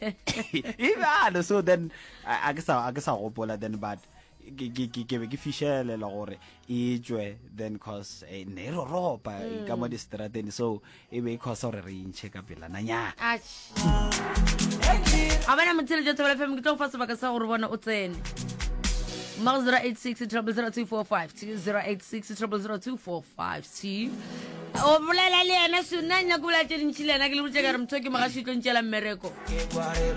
e bjalo so then a ke sa a ke sa gopola then but ke ke ke ke be ke fishelela gore e tswe then cause eh, ne ro ropa mm. ka mo di strateni so e be e cause gore re inche ka pela na nya a bana motshele jo thobela fm ke tlo fa sebaka sa gore bona o tsene Mouth 086 000 245 086 000 245 o bolela le yena so nna nyako bolela tše dintšhi le yena ke le botse ka re motho ke mogaši tlo ntšela mmereko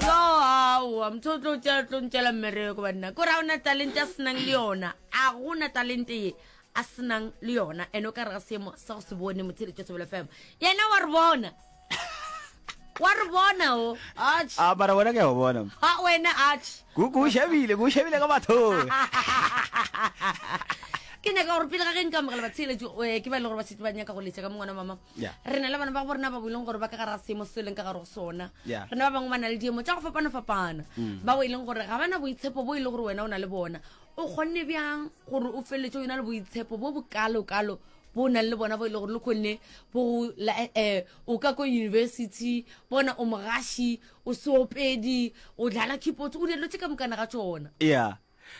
yo aowa motho o tlo tlo ntšela mmereko banna ko ra ona talente a senang le yona a gona talente ye a senang le yona ene o ka re ga seemo sa go se bone motsheletšo sebele fema yena wa re bona wa re bona o ach a bara wena ke a go bona ha wena ach ku ku shabile ku shabile ka batho ke nyaka gore pele ga ge nka amogela batsheeletso eh, ke ba e le gore ba setse ba nyaka go letša ka mongwana mama Yeah. re na le bana ba go borena ba bo e leng gore ba ka gara seemo se e leng ka gare go sona Yeah. Mm. re na ba bangwe ba na le diemo tša go fapana-fapana ba bo e leng gore ga ba na boitshepo bo e le gore wena o na le bona o kgonne bjang gore o feleletse o yona le boitshepo bo bokalokalo bo o nang le bona bo e le gore le kgonne bo um o ka ko university bona o mogashi o seopedi o dlala keyboards o dilo tse ka mokana ga tsona ya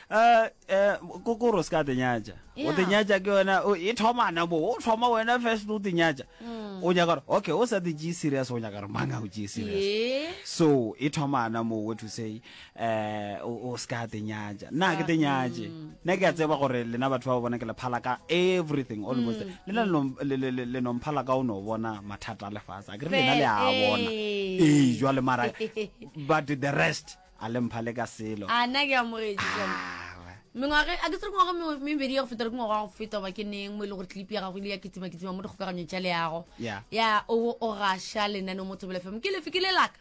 um ko kore o se ka tenyatša o tenyatša ke yona e thomana bo o thoma wena first o tenyatša mm. o nyaka gore okay o sa te tšee serious o nyaka gore mang a o tšee serious so e thomana mo what to say um o se ka te nyatša nna ke te nyatše nna ke a tseba gore lena batho ba ba bona ke lephala ka everything almost lena le nomphala ka o no bona mathata a lefase a kere lena le a bona ee jwa le mara but the rest a le mphale ka selo a nna ke amogetše jalo mengwage a ke tsere ngwaga mebedi ya go feta le ke ngwaga wa go feta goba ke neng mo e le gore tlipi ya gago ile ya kitsimakitima mo dikgokaganyong tša leago ya o gaša lenaneo mo thobelefemo ke lefe ke le laka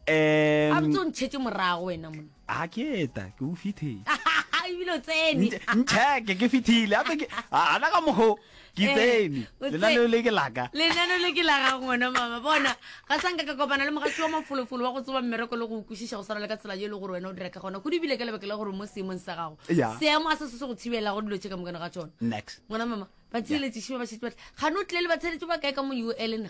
a botse o ntšhetše morago wena mona a ke eta ke o fithile ebile o tsene ntšheke ke fithile ape ke ana ka mogo ke eh, tsene lenaneo le ke laka lenaneo le ke laka ngwana mama bona ga sanka ka kopana le mogatsi wa mafolofolo wa go tsoba mmereko le go kwešiša go swana le ka tsela ye e le gore wena o dira ka gona go dibile ka lebaka la gore mo seemong sa gago seemo a se se se go thibela go dilo tše ka mokane ga tsone ngwana mama ba tshieletsešima ba šetse batle gane o tlile le ba tsheletše ba kae ka mo ul na